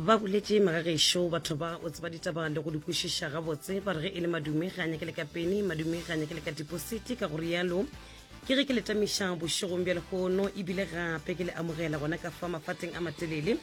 ba boletše magagešo batho ba o tseba ditaba le go di kwešiša gabotse ba re ge e le madume ga a nyake le ka peni madume ga a nyake le ka dipositi ka go rialo ke ge ke letamiša bošegong bja lehono ebile gape ke le amogela gona ka fa mafateng a matelele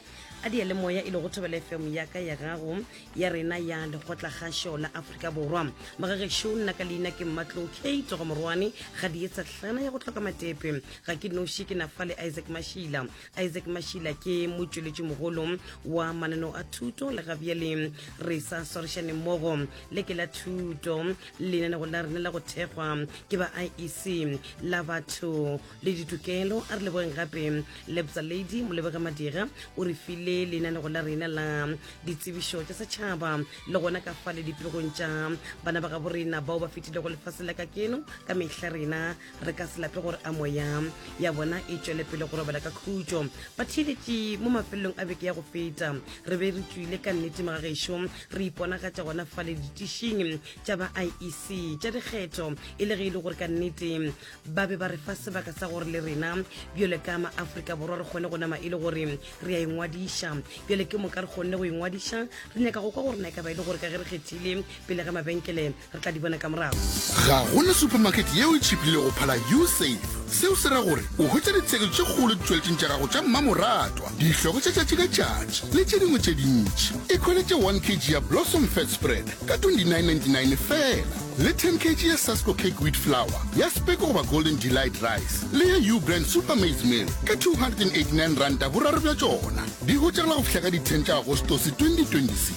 a di moya e le go thobela fm ya ka ya gago ya rena ya lekgotla kgašo la aforika borwa magagešo nna ka leina ke mmatlo k togomorwane ga di etsa tlana ya go tlhoka matepe ga ke noši ke nafa le isaac mashila Isaac Mashila ke motšweletšimogolo wa mananeo a thuto le ga bjale re sa swarišane mmogo le ke la thuto lenanego la rena la go thekgwa ke ba iec la batho le ditokelo a re lebogeng gape lebza lady molebega madira o re file lenanego la rena la ditsebišo tša setšhaba le gona ka fa le dipegong tša bana ba gabo rena bao ba fetilego lefase la ka keno ka mehla rena re ka se lape gore a moya ya bona e tšwele pele go robela ka khutšo ba theeletše mo mafelelong a beke ya go feta re be re tswile ka nnete magagešo re iponagatša gona fa le ditišing tša ba iec tša dikgetho e le ge e le gore ka nnete ba be ba re fa sebaka sa gore le rena bjale ka maaforika borwa re kgone go nama e le gore re a ingwadiša bjale ke moka re kgonne go ingwadiša re nyaka go kwa gore na e ka ba e le gore ka ge re kgethile pele ga mabenkele re tla di bona ka morago. Ga go na supamakete yeo e tšhiplile go phala U-Save. Seo se ra gore o hwetša ditshekiso tše kgolo ditšweletšing tša gago tša mmamoratwa, dihloko tša tšatši ka tšatši le tše dingwe tše dintši. Ikhweletše 1 kg ya Blossom Fat Spread ka 29.99 feela, le 10 kg ya Sasko Cake Wheat Flour, ya Speko goba Golden Delight Rice le ya U-Brand Super Maize Meal ka R289 boraro bja tšona. Di hwetšagala go fihla ka di 10 tša Agostose 2026.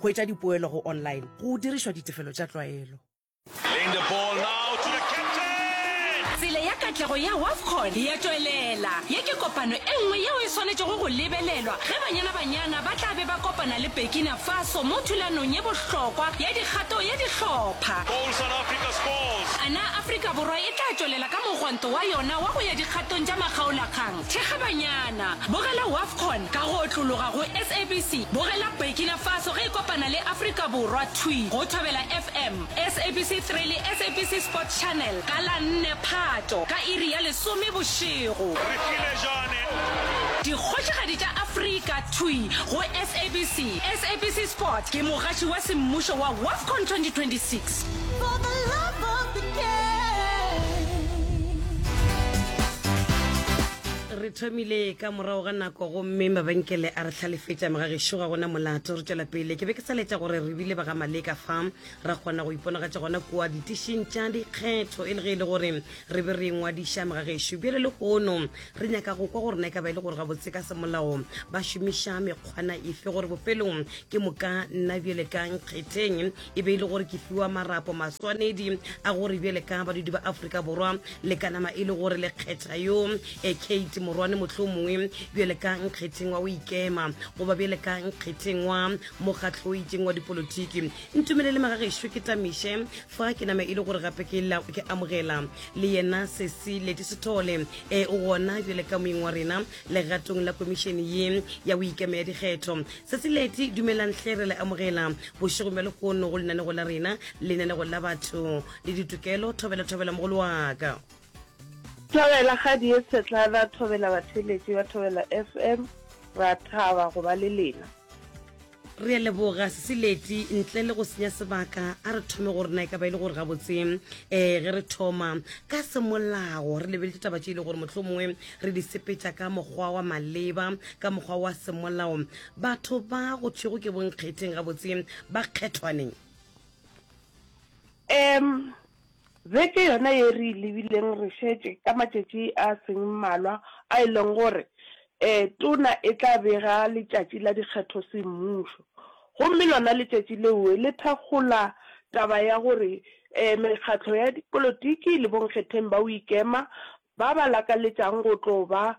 Go etša dipoelo go online go dirišwa ditefelo tša tlwaelo. Playing the ball now to the captain. Tsela ya katlego ya Wafcon ya tšwelela. Ye ke kopano e nngwe yeo e swanetšego go lebelelwa ge Banyana Banyana ba tla be ba kopana le Burkina Faso mo thulanong ye bohlokwa ya dikgato ya dihlopha. Goal South Africa scores. A na Afrika Borwa e tla tšwelela ka mogwanto wa yona wa go ya dikgatong tša makgaolakgang? Thekga Banyana, Bogela Wafcon ka go otlologa go SABC, Bogela Burkina Faso ge e kopana le Afrika Borwa thwi go Thobela FM, SABC 3 le SABC Sport Channel ka la 4 Phato ka iri ya lesome bošego. Re file Jane. Dikgošigadi tša Afrika thwi go SABC, SABC Sport ke mogatši wa semmušo wa Wafcon 2026. re thomile ka morago ga nako gomme mabenkele a re hlalefetša megagešo ga gona molato re tšwela pele ke be ke sa letša gore re bile ba ga maleka fa ra kgona go iponagatša gona kua ditišing tša dikgetho e le ge e le gore re be re ngwadiša megagešo bjale le gono re nyaka go kwa go rena e ka ba e le gore gabotse ka semolao ba šomiša mekgwana efe gore bofelong ke moka nna bjale ka nkgetheng e be e le gore ke fiwa marapo maswanedi a gore bjale ka badudi ba aforika borwa le ka nama e le gore le kgetha yo e kate morwane motlho mongwe bjale ka nkgetheng wa o ikema goba bjale ka nkgetheng wa mokgatlho o itseng wa dipolotiki ntumele le magagešo ke tamiše fa ke nama e le gore gape ke la ke amogela le yena sesi leti sethole e o gona bjale ka moeng wa rena Legatong la komišene ye ya go ikemea dikgetho, Sesileti dumelang hle re le amogela bošegong bja lehono go lenanego la rena, lenanego la batho le ditokelo. Thobela, thobela mogolo wa ka. Thobela kgadi ye tshetlana, thobela batheeletši ba Thobela FM, ra thaba go ba le lena. Re a leboga Sesileti. Ntle le go senya sebaka, a re thome gore na e ka ba e le gore gabotse um ge re thoma ka semolao re lebeletse taba tše e le gore motlho mongwe re di sepetša ka mokgwa wa maleba ka mokgwa wa semolao batho ba go thwego ke bonkgetheng gabotse ba kgethwaneng um Beke yona ye re e lebileng re šetše ka matšatši a seng mmalwa a e leng gore Tona e tla bega letšatši la dikgetho semmušo, gomme lona letšatši leo le thakgola taba ya gore mekgatlo ya dipolotiki le bonkgetheng ba Oikema Ba ba lakaletšang go tlo ba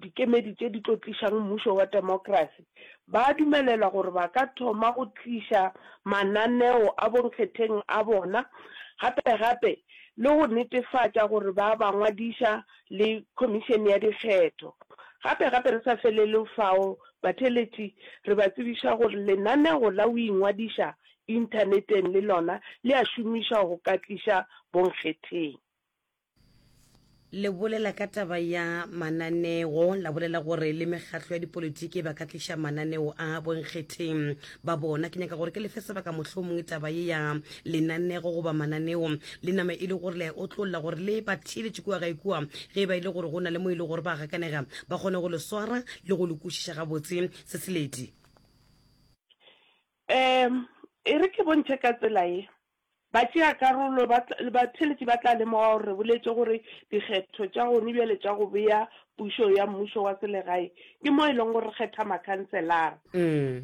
dikemedi tše di tlo tlišang mmušo wa temokrasi ba a dumelelwa gore ba ka thoma go tliša mananeo a bonkgetheng a bona gape-gape le go netefatša gore ba ba ngwadiša le Khomišene ya Dikgetho. Gape-gape re sa felele fao, batheeletši re ba tsebiša gore lenaneo la go ingwadiša Inthaneteng le lona le a šomišwa go ka tliša bonkgetheng. Le bolela ka taba ya mananeo, la bolela gore le mekgatlo ya dipolitiki ba ka tliša mananeo a bonkgetheng ba bona. Ke nyaka gore ke lefe sebaka mohlomongwe taba ye ya lenanego goba mananeo le nama e le gore le a e otlolla gore le ba theeletše kua ga ikua ge e ba e le gore go na le mo e le gore ba gakanega ba kgone go le swara le go le kwešiša gabotse se seledi. Um e re ke bontšhe ka tsela ye, Batšeakarolo ba tla, le batheeletši ba tla lemoga gore re boletše gore dikgetho tša gone bjale tša go bea pušo ya mmušo wa selegae ke mo e lego gore re kgetha makhanselara.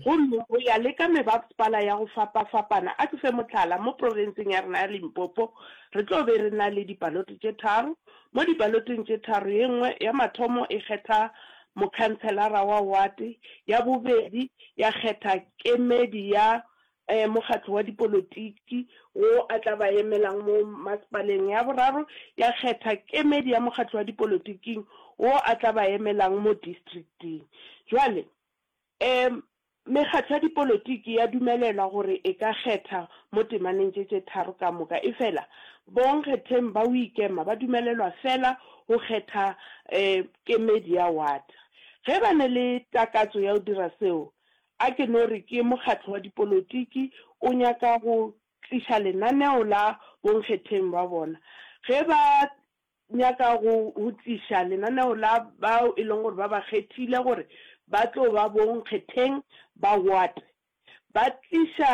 Gomme go ya le ka mebapspala ya go fapafapana, a ke fe mohlala, mo profenseng ya rena ya Limpopo re tlo be re na le dibalote tše tharo. Mo dibaloteng tše tharo, ye nngwe ya mathomo e kgetha mokhanselara wa wate, ya bobedi ya kgetha kemedi ya ee, mokgatlo wa dipolotiki wo a tla ba emelang mo masepaleng ya boraro ya kgetha kemedi ya mokgatlo wa dipolotiking wo a tla ba emelang mo districting. Bjale, ee, mekgatlo ya dipolotiki ya dumelelwa gore e ka kgetha mo temaneng tše tše tharo ka moka, efela bonkgetheng ba go ikema ba dumelelwa feela go kgetha, ee, kemedi ya wata. Ge ba ne le takatso ya go dira seo, A ke no re ke mokgatlo wa dipolotiki o nyaka go tliša lenaneo la bonkgetheng ba bona. Ge ba nyaka go tliša lenaneo la bao e leng gore ba ba kgethile gore ba tlo ba bonkgetheng ba Ward, ba tliša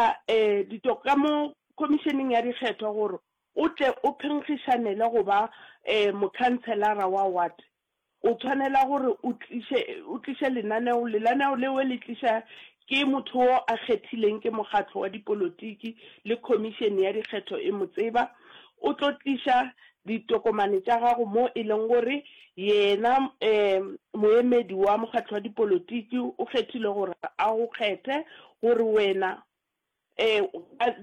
ditoka ka mo Khomišeneng ya Dikgetho gore o tle o phenkgišanele go ba mokhanselara wa Ward. O tshwanela gore o tliše, o tliše lenaneo, lenaneo lewe le tliša ke motho wo a kgethileng ke mokgatlo wa dipolotiki le khomišene ya dikgetho e mo tseba. O tlo tliša ditokomane tša gago mo e leng gore yena um moemedi wa mokgatlo wa dipolotiki o kgethile gore a go kgethe gore wena Ee,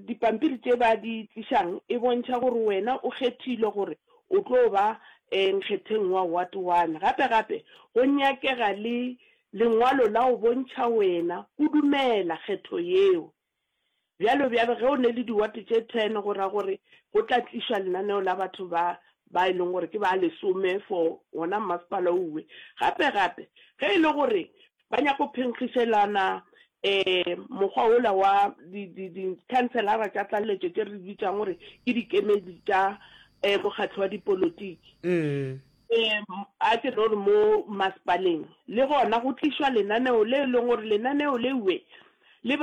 dipampiri tše ba di tlišang e bontšha gore wena o kgethilwe gore o tlo ba nkgetheng wa Ward One. Gape-gape, go nyakega le lengwalo la go bontšha wena o dumela kgetho yeo. Bjalo-bjalo, ge o ne le diwate tše ten, go ra gore go tla tlišwa lenaneo la batho ba ba e leng gore ke ba lesome for wona mmasepala owe. Gape-gape, ge e le gore ba nyaka go phenkgišelana um mokgwa wola wa dikhanselara tša tlaleletšo tše re bitsang gore ke dikemedi tša um mokgatlho wa dipolotiki um a ke no re mo masepaleng le gona go tlišwa lenaneo le e leng gore lenaneo leue le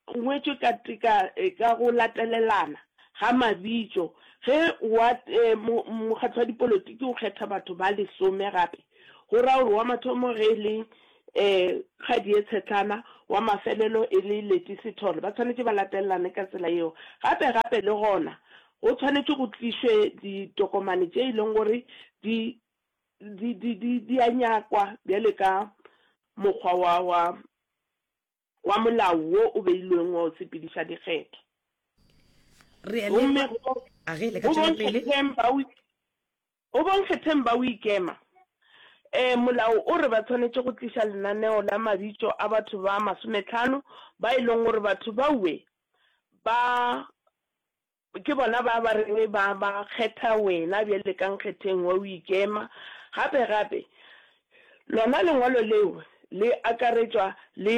Go ngwetšwe ka teka ka go latelelana ga mabitšo ge wa Mokgatlo wa Dipolotiki o kgetha batho ba lesome gape, go ra gore wa mathomo ge e le Kgadie Tshetlana, wa mafelelo e le Leti Sithole. Ba tshwanetše ba latelelane ka tsela yeo. Gape gape le gona go tshwanetše go tlišwe ditokomane tše e leng gore di di di di di a nyakwa bjale ka mokgwa wa wa. wa molao wo o beilweng wa go sepediša dikgetho gomme go bonkgetheng ba o ikema um molao o re ba tshwanetše go tliša lenaneo la mabitso a batho ba masometlhano ba e leng gore batho baue ba Ke bona ba ba reng ba ba kgetha wena bjale ka nkgetheng wa go ikema. Gape, gape, lona Lengwalo leo le akaretšwa le,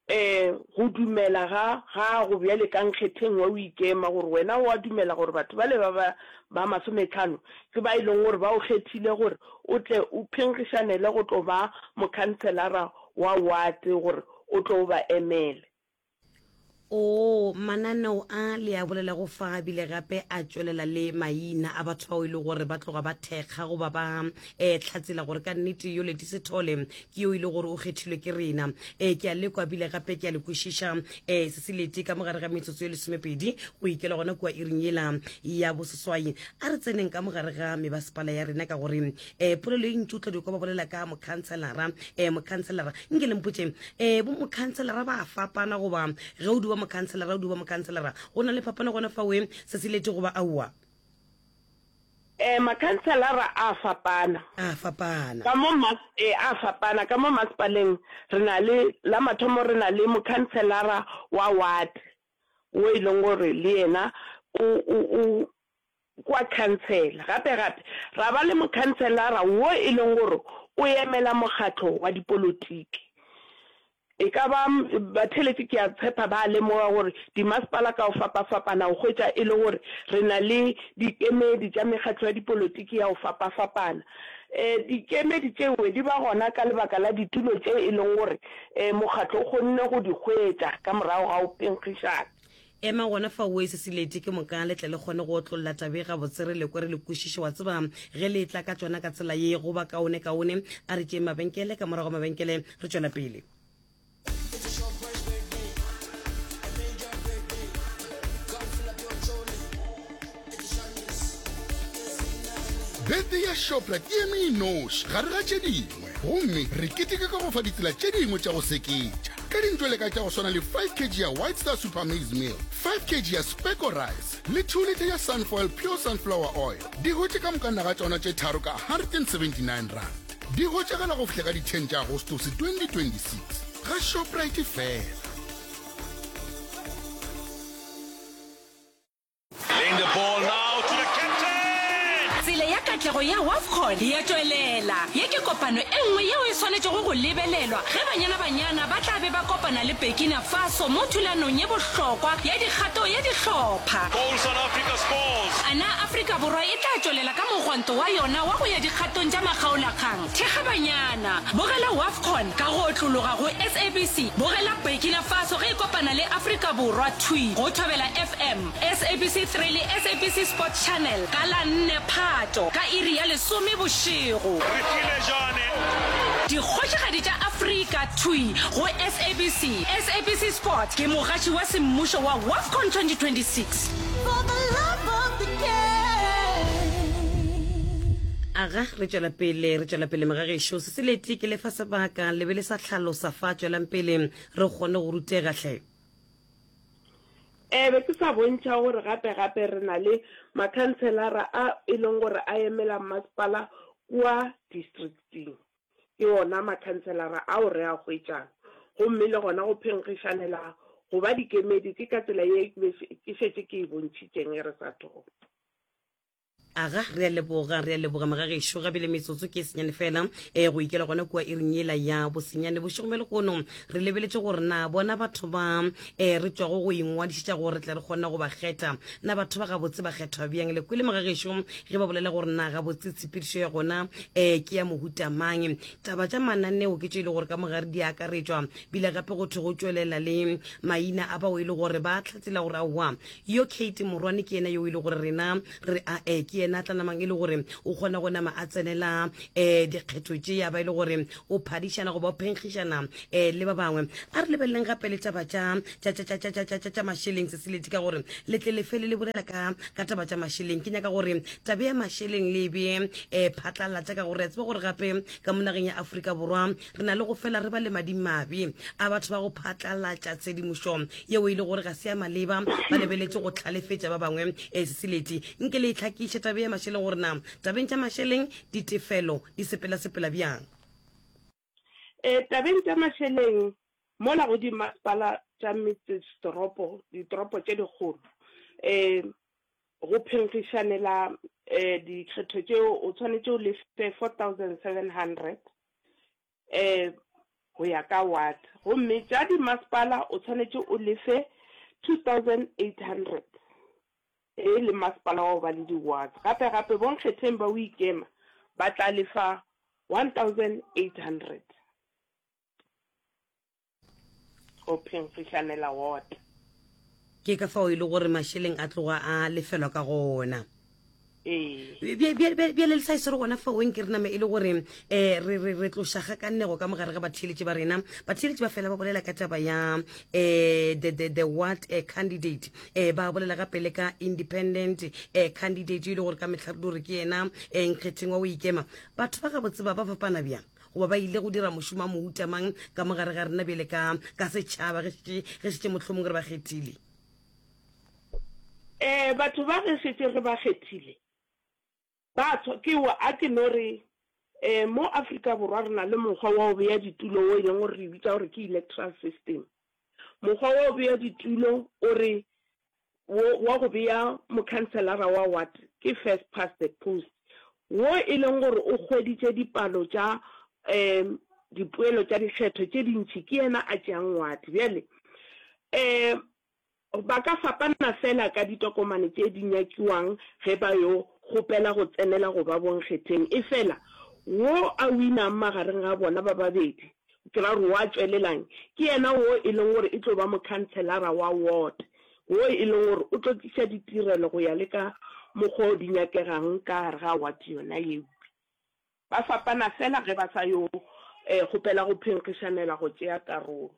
ee, go dumela ga gago bjale ka nkgetheng wa go ikema, gore wena o a dumela gore batho bale ba ba, ba masometlhano ke ba e lego gore ba go kgethile gore o tle o phenkgišanele go tlo ba mokhanselara wa wate, gore o tlo o ba emele. Oo, mananeo a le a bolelago fa a bile gape a tšwelela le maina a batho bao e le gore ba tloga ba thekga goba ba um eh, hlatsela gore ka nnete yo leti sethole ke yo e le gore o kgethilwe ke rena um ke a lekwa bile gape ke a le kwešiša um eh, seseleti ka mo gare ga metsotso e lesomepedi go ikela gona kua iring yela ya boseswai a re tseneng ka mo gare ga mebasepala ya rena ka gore um polelo e ntši o tla di kwa ba bolela ka mokhanselara um eh, mokhanselara nke le mpotse um eh, bo mokhanselara ba fapana goba ge o duba mokhanselara o duba mokhanselara go na le fapana gona fa oe se se lete goba aowa eh makhanselara a fapana a fapana ka mo mas eh a fapana ka mo masipaleng re na le la mathomo re na le mokhanselara wa ward o e leng gore le yena o o kua khansele. Gape gape ra ba le mokhanselara wo e leng gore o emela mokgatlo wa dipolotiki. E ka ba batheletši ke a tshepa ba a lemoga gore dimasepala ka go fapafapana o hwetša e le gore re na le dikemedi tša mekgatlo ya dipolotiki ya go fapafapana. Um dikemedi tšeo di ba gona ka lebaka la ditulo tše e leng gore um mokgatlo o kgonne go di hwetša ka morago ga go phenkgišana. Ema gona fao o ese silete ke moka le tle le kgone go otlolola tabe gabotse re lekwe re le kwešiše wa tseba ge le etla ka tšona ka tsela ye go ba kaone kaone a re tšeeng mabenkele ka morago mabenkele re tšwela pele Birthday ya Shoprite e eme e noši gare ga tše dingwe gomme re keteka ka go fa ditsela tše dingwe tša go seketša ka dintšo le ka tša go swana le 5 kg ya White Star Super Maize Meal, 5 kg ya Specco Rice le 2 litha ya Sunfoil Pure Sunflower Oil. Di hotše ka mokanna ga tšona tše tharo ka R179. Di hwetšagala go fihla ka di 10 tša Agostose 2026 ga Shoprite fela. Tsela ya katlego ya Wafcon ya tšwelela. Ye ke kopano e nngwe yeo e swanetšego go lebelelwa ge Banyana Banyana ba tla be ba kopana le Burkina Faso mo thulanong ye bohlokwa ya dikgato ya dihlopha. A na Afrika Borwa e tla tšwelela ka mogwanto wa yona wa go ya dikgatong tša makgaolakgang? Thekga banyana, bogela Wafcon ka go otlologa go SABC, bogela Burkina Faso ge e kopana le Afrika Borwa thwi go Thobela FM, SABC 3 le SABC Sport Channel ka la 4 Phato ka iri ya lesome bošego. Re file Jane. Dikgošigadi tša Afrika thwi go SABC. SABC Sport ke mogatši wa semmušo wa Wafcon 2026. aga re tšwela pele re tšwela pele mogagešo se se lete ke lefa sebaka le be le sa tlhalosa fa tšwelang pele re kgone go rutega tlhe um be ke sa bontšha gore gape gape re na le makhanselara a e leng gore a emela mmasepala kua districting Ke ona makhanselara ao re a hwetšang. Gomme le gona go phenkgišanela go ba dikemedi ke ka tsela ye ke šetše ke e bontšhitše ge re sa thoma. Aga, re a leboga. Re a leboga, magagešo. Gabjale metsotso ke e senyane feela ee go ikela gona kua iring yela ya bosenyane bošegong bja lehono. Re lebeletše gore na bona batho ba e re tswago go ingwadišetša gore re tle re kgone go ba kgetha na batho ba gabotse ba kgethwa bjang le kwele mogagešo ge ba bolela gore na gabotse tshepedišo ya gona um ke ya mohuta mang taba tša mananeo ke tšo e le gore ka mogare di akaretswa bile gape go thwe go tšwelela le maina a bao e le gore ba tlhatsela gore aowa Yo Kate morwane ke yena yo e le gore rena re a eh, ke yena a tla namang e le gore o kgona go nama a tsenela eh dikgetho tše ya ba e le gore o phadišana goba o phenkgišana eh le ba bangwe a re lebeleleng gape le taba tša tša tša tša tša tša tša tša tša mašeleng seseleti ka gore le tle le fele le bolela ka ka taba tša mašeleng ke nyaka gore tabe ya mašeleng le be eh phatlalatša ka gore re a tseba gore gape ka mo nageng ya Afrika Borwa Re na le go fela re ba le madimabe a batho ba go phatlalatša tshedimošo yeo e le gore ga se ya maleba, ba lebeletše go hlalefetša ba bangwe. E se seleti nke le e hlakiše tabe ya mašeleng gore na tabeng tša mašeleng ditefelo di sepelasepela bjang. E, tabeng tša mašeleng mola go dimasepala tša metsesetoropo, ditoropo tše dikgolo, e, go phenkgišanela e, dikgetho tšeo o tshwanetše o lefe 4700. eh go ya ka ward gomme tša di masepala o tshwanetse o lefe 2800 e le masepala wa ba le di ward gape gape bonkgetheng ba o ikema ba tla lefa 1800 go phemfišanela wota ke ka fao e le gore mašeleng a tloga a lefelwa ka gona bjale le tlhagiso re gona faoeng ke re nama e le gore um re tloša ga ka nnego ka mogare ga batheeletši ba rena batheeletši ba fela ba bolela ka taba ya um the what eh, candidate um ba bolela gape le ka independent um candidate e le gore ka metlha re di gore ke yena um nkgetheng wa o ikema batho ba gabotse ba ba fapana bjang goba ba ile go dira mošomo a mouta mang ka mo gare ga rena bjele ka ka setšhaba ge šetše mohlomong re ba kgethile um batho ba ge šetše re ba kgethile ba tshwa ke wa a ke no re um mo afrika borwa re na le mokgwa wa go beya ditulo o e leng gore re bitsa gore ke electoral system mokgwa wa go beya ditulo o re wo wa go bea mokhanselara wa ward ke first past the post, wo e leng gore o hweditše dipalo tša um dipoelo tša dikgetho tše dintši, ke yena a tšeang ward. Bjale um ba ka fapana feela ka ditokomane tše di nyakiwang ge ba yo kgopela go tsenela go ba bonkgetheng, efela wo a winang magareng ga bona ba babedi Ke ra gore wa tšwelelang ke yena wo e leng gore e tlo ba mokhanselara wa ward, wo e leng gore o tlo tliša ditirelo go ya le ka mokgwa o di nyakegang ka gare ga ward yona eupša. Ba fapana feela ge ba sa yo kgopela go phenkgišanela go tšea karolo.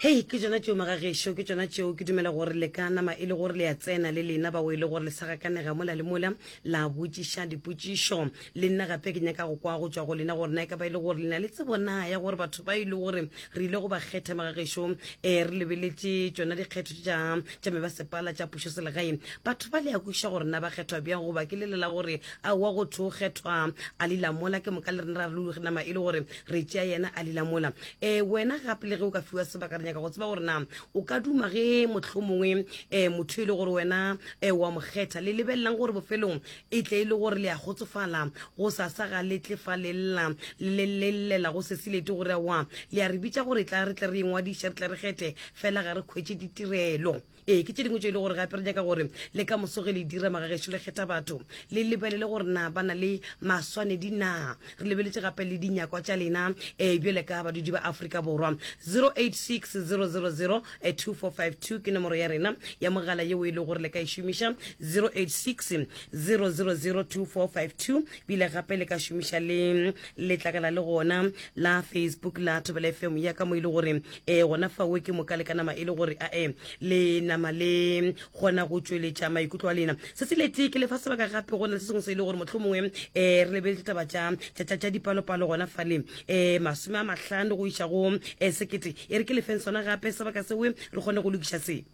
hei ke tsona tšeo magagešo ke tsona tšeo ke dumela gore le ka nama e le gore le ya tsena le lena bao e le gore le sa gakanega mola le mola la botšiša dipotšišo le nna gape ke nyaka go kwa go tswa go lena gore na e ka ba e le gore lena le tsebo na ya gore batho ba e le gore re ile go ba kgetha magagešo um re lebeletše tsona dikgetho tša tša me ba sepala tša pušo selegae batho ba le ya kweša gore na ba kgethwa bjang goba ke lelela gore a wa go tho kgethwa a lelamola ke moka le rena ra rulugena ma e le gore re tšea yena a lila mola um wena gape le ge o ka fiwa sebaka re nyaka go tseba gore na o ka duma ge motlho mongwe um eh, motho e le gore wena um wa mo kgetha le lebelelang gore bofelong e tle e le gore le ya kgotsofala go sasa ga le tle fa le lla le llela go sesilete gore wa le ya re bitsa gore tla re tle re engwadiša re tle re kgethe fela ga re kgwetse ditirelo Ee, ke tše dingwe tšeo e le gore gape re nyaka gore le ka moso ge le dira magagešo le kgetha batho le lebelele gore na ba na le maswanedi na re lebeletše gape le dinyakwa tša lena um bjale ka badudi ba aforika borwa 086 000 2452 ke nomoro ya rena ya mogala yeo e le gore le ka e šomiša 086 000 2452 bile gape le ka šomiša le letlakala le gona la facebook la thobela fm ya ka mo e le gore e gona fawo ke moka le ka nama e le gore a e le nama le gona go tšweletša maikutlo a lena se se lete ke lefa sebaka gape go na le se sengwe se e le gore motlho mongwe um re lebeletse taba tša dipalopalo gona fale um masome a mahlano go iša go um sekete e re ke lefeng sona gape sebaka seo re kgone go lokiša se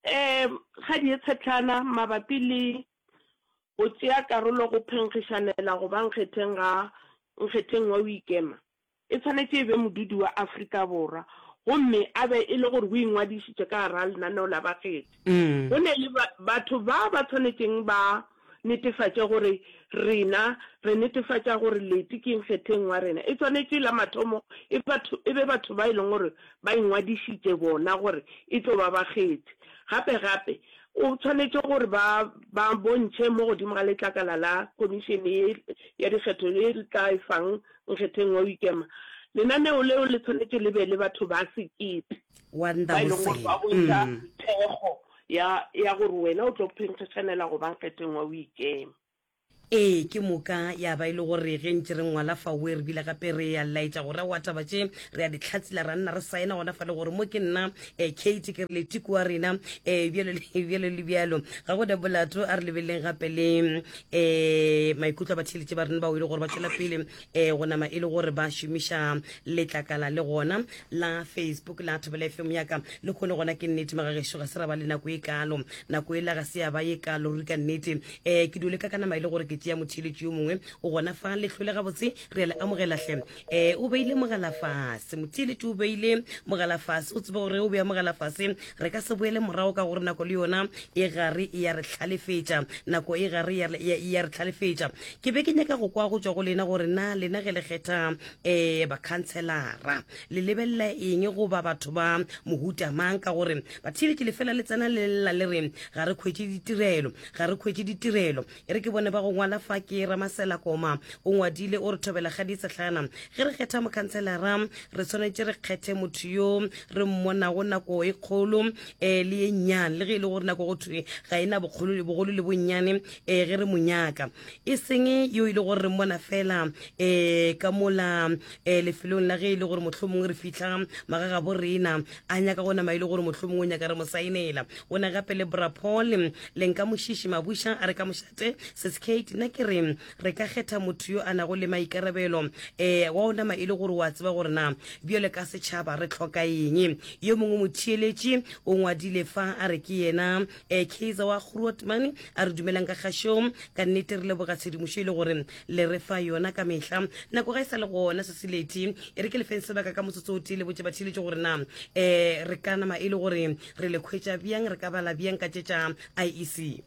um ga dietshetlana mabapi le go tšea karolo go phenkgišanela go ba nkgetheng ga nkgetheng wa Oikema e tshwanetše e be modudi wa Afrika Borwa gomme a be e le gore o ingwadišitše ka gar'a lenaneo la bakgethi. Go ne le batho ba ba tshwanetšeng ba netefatše gore rena re netefatša gore Leti ke nkgetheng wa rena. E swanetše la mathomo e batho, e be batho ba e leng gore ba ingwadišitše bona gore e tlo ba bakgethi. Gape gape o swanetše gore ba, ba bontšhe mo godimo ga letlakala la Khomišene ye ya Dikgetho ye re tla e fang nkgetheng wa go ikema. Lenaneo leo le swanetše le be le batho ba sekete ba e leng gore ba bontšha thekgo. Ya, ya gore wena o tlo phenkgešanela go ba nkgeteng wa o ikema. Ee, ke moka ya ba e le gore ge ntše re ngwala fawe re bile gape re ya laetša go ra wa taba tše re a di tlhatsila ra nna re saena gona fa le gore mo ke nna eh, Kate ke re le tiko wa rena eh, bjalo le bjalo le bjalo ga go da bolato a re lebeleleng gape le eh, maikutlo a batheeletše ba rena bao e le gore ba tšwela pele e go nama e le gore ba šomiša letlakala le gona la facebook la thobela fm yaka le kgone gona ke nnete magagešo ga se ra ba le nako e kalo nako e la ga se ya ba ye kalo ruri ka nnete um ke dule ka ka nama e le gore ke tšea motheletši yo mongwe o gona fa letlhole gabotse re ya le amogelatlhe um eh, o beile mogala fase motheletši o beile mogala fase o tsebe gore o beya mogala fase re ka se boele morago ka gore nako le yona e gare e ya re tlhalefetša nako e gare e ya re tlhalefetša ke be ke nyaka go kwa go tswa go lena gore na lena ge le kgetha um bakhantshelara le lebelela eng goba batho ba mohuta mang ka gore bathile ke lefela le tsena le lela le re ga re kgwetše ditirelo ga re kgwetše ditirelo e re ke bone ba go ngwala fa ke ramasela koma o ngwadile o re thobela ga disetlhana ge re kgetha mokhantshelara re tshwanetse re kgethe motho yo re mmonago nako e kgolo um le ye nnyane le ge e le gore nako go thwe ga e na bogolo le bonnyane e ge re mo nyaka e seng yo e le gore re mmona fela um ka mola um lefelong la ge e le gore motlho mongwe re fitlha magaga bo rena a nyaka go nama e le gore motlho mongwe o nyaka re mo saenela o ne gape le brapol le nka mošiši mabuša a re ka mošate seskate nna ke re re ka kgetha motho yo a nago le maikarabelo um wa o nama e le gore wa tseba gore na bjale ka setšhaba re tlhoka eng yo mongwe motheeletši o ngwadile fa a re ke yena eh, kaiser wa groot mane a re dumelang ka kgašong ka nnete re leboga tshedimošo e le gore le re fa yona ka mehla nako ga e sa le gona se se leti e re ke lefeng sebaka ka motsotso o tee le botse batheletše gore na um re ka nama e le gore re le kgwetša bjang re ka bala bjang ka tše tša iec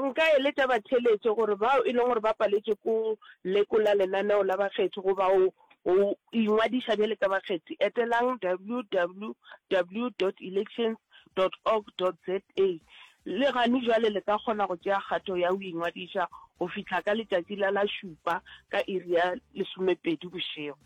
Nka eletša batheeletše gore bao e lego gore ba paletšwe ke go lekola lenaneo la bakgethi goba go go ingwadiša bjale ka bakgethi, etelang www dot elections dot org dot za le gane bjale le ka kgona go tšea kgato ya go ingwadiša go fihla ka letšatši la la šupa ka iri ya lesomepedi bošego.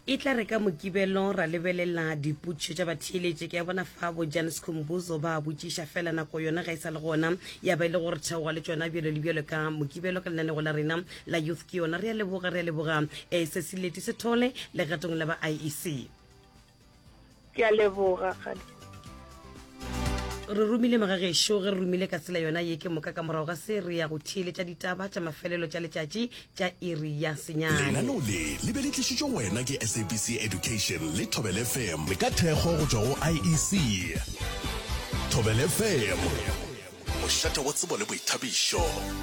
e tla re ka mokibelo ra lebelela dipotšišo tša batheeletše ke ya bona fa bojan scombuzo ba botšiša fela nako yona ga e sa le gona ya ba e le gore theoga le tšona bjalo le bjalo ka mokibelo ka lenaneo la rena la youth ke yona re a leboga re a leboga um se se leti se thole legatong la ba iec ke a leboga kgadi re romile magagešo ge re romile ka tsela yona ye ke moka ka morago ga se re ya go theeletša ditaba tša mafelelo tša letšatši tša iri ya senyane lenaneo le le be le tlišitšwe go wena ke sabc education le thobel fm ka thekgo go tšwa go iec thobel fm mošate wa tsebo le boithabišo